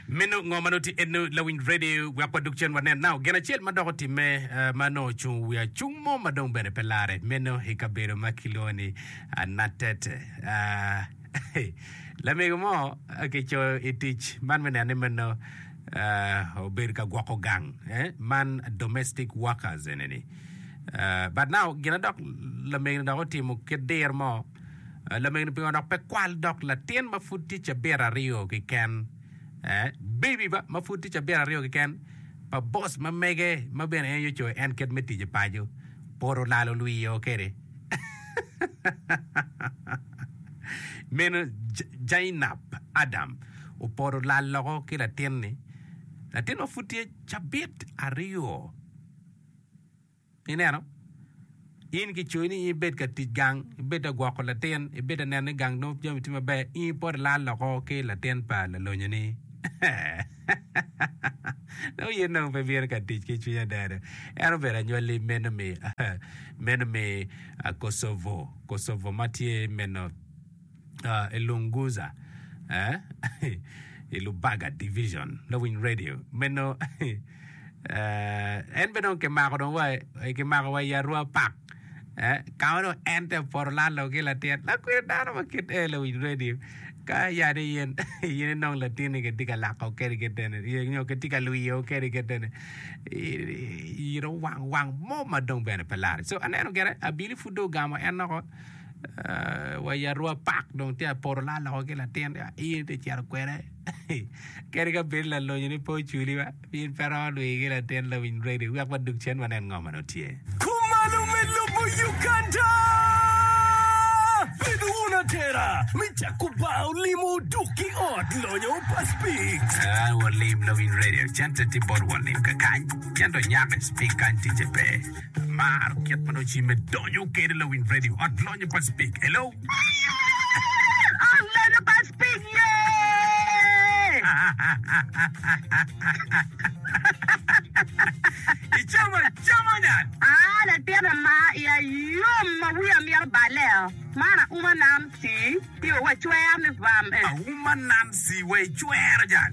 Meno ngo ma nongo tye eno lawiny radio wek wadog cen wanen nao gin acel ma dok otimme eh, ma nongo ocungo wi acung mo ma dong bene pe lare meno i kabedo ma kilwongo ni ah, Natet. Ah, lamego mo ah, kicoyo i tic man me neno ni meno ah, obedo ka gwoko gang eh, man domestic workers eneni. Ah, but now gina dok lamego ni dok otimo kit dir mo Lamego pingo dok pe kwal dok latin ma pud tye cabit aryo keken, eh, baby ba, ma pud tye cabit aryo keken pa boss ma mege ma bene en aye ocoyo en kit me tic i paco. Pud olalo lwio kwede. Meno Zainab Adam opoto olal loko ki latin-ni, latin ma pud tye cabit aryo. Ineno? In kicoyi ni in ibed ka tic gang, ibed ka gwoko latin, ibed ka neno ni gang nongo jami tye maber, in ipot ilal loko ki latin pa lalonyoni. Dong yin dong pe ibino ka tic ki cwiny adada. En obedo anywalli meno me meno me ah, Kosovo, Kosovo ma tye meno. i Lunguza, i Lubaga Division, lawiny radio meno. En bene dong kimako dong wa kimako wa i Arua Park. Ka ma dong en te poto lalo ki latin lakwena dano ma kit en lawiny radio ka yani yen yen inong latinni kitye ka lako kene kitene nyo kitye ka lwiyo kene kitene iro wang wang mo ma dong bene pe lare. So aneno gene abili pud dong ogamo en loko. wa i Arua Park dong tye ka poto laa loko ki latin in itye ka cito kwede kadi ka bedo lalonyo ni pe oculi wa in pe iromo dwi ki latin lawiny ready wek wadog cen wanen ngo ma dong tye. Kumalo me lobo Uganda! Bed wun atera me cako baa olimo oduk ki ot lonyo pa Spix. An walim lawiny radio cente tye bot walim kakany cento nyako Spix kany ticce pe. Amaro kit ma nongo cimme donyo kede lawiny radio ot lonyo pa Speke. Hello. Ot lonyo pa Speke ye. Icomo como nyan. Ah latin ama iya yom ma wiya mito baleo man auma nam tii. Pi wa cwer ni bam eh. Auma Nancy wa i cwero jal.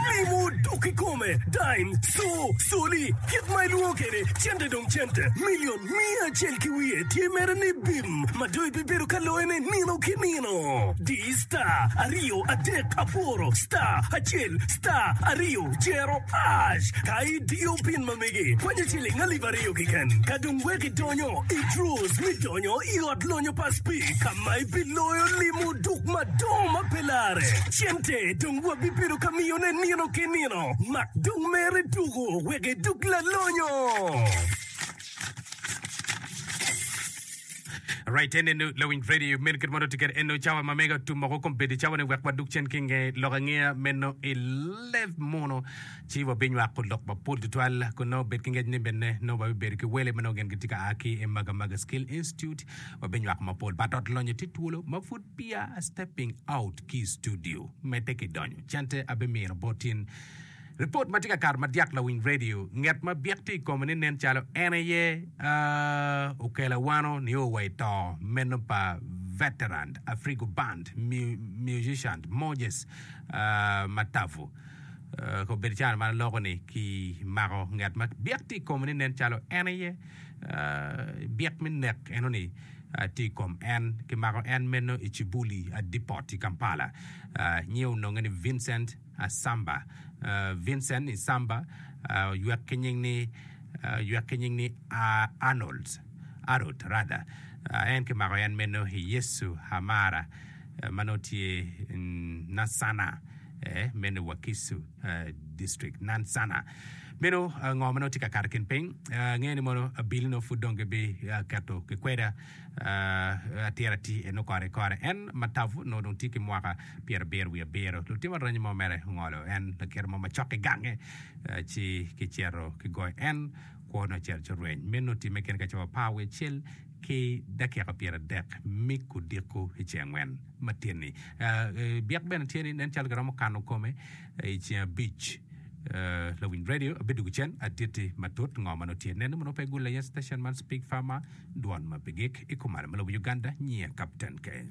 Mimo dok ikome, dime, co, coli, kit ma ilwongo kede cente dong cente, million miya acel ki wiye tye mere ni bim ma dong ibibedo ka loye ne nino ki nino. Di star aryo adek aboro star acel star aryo cero ash ka idiyo pin ma mege kwanyo ciling alip aryo kiken ka dong wek Idonyo i Drew's me donyo i Ot Lonyo pa Speke ka ma ibiloyo limo duk madongo ma pe larre. Cente dong wabibedo ka miyone nino ki nino. Mak dong mer iduku wek iduk lalonyo. Right en eno lawiny Freddy meno kit ma nongo tye kede eno cawa ma mega tum moko kombeddi cawa ni wek waduk cen ki nge lok angeya meno i leb muno Ci wabinywako lok mapol tutwal kun nongo bed ki ngec ni bene nongo wabibedo ki wele ma nongo gin gitye ka a ki i Magamaga Skill Institute. Wabinywako mapol bot ot lonyo tye twolo ma pud peya a stepping out ki i studio. Medde ki donyo, cente abimino bot in ripot ma tye ka kato madyak lawiny redio. Nget ma byek tye i kome ni nen calo en aye okela wano nio wa i to meno pa veteran Afrigo Band musician Moses Matavu. Kong bed caro man loko ni ki mako ngat ma byek tye i kome ni nen calo en aye byek me nek eno ni tye i kom en. Ki mako en meno i Kibuli Depot i Kampala. Nyinge ononge ni Vincent Asamba. Vincent Isamba oywek ki nying ni oywek ki nying ni Arnold Arot rather. En ki mako en meno i Yesu Amara ma nongo tye Nassana. mene Wakiso district nan sana meno ngo ma nongo tye ka kato kin piny angeyo ni mono bill no pud dong gibi keto ki kweda atira atir eno kore kore en matavu nongo dong tye ki mwaka pyera abiro wiye abiro lutimo aranyi mo mere ongolo en lakiro mo macok ki gange ci ki cito ki goyo en kwo nongo cito ci orweny meno time kene ka cowa par wiye cel ki dakika pyeradek me odiko i ceng angwen matin-ni. Byek bene tye ni nen calo giromo kano kome i ceng abic. Lawiny radio abidwogo cen atiti matut ngo ma nongo tye nene ma nongo pe gule iye station man Speak Farmer dwon ma pe gik i kumalo me lobo Uganda nyiya Kapten K.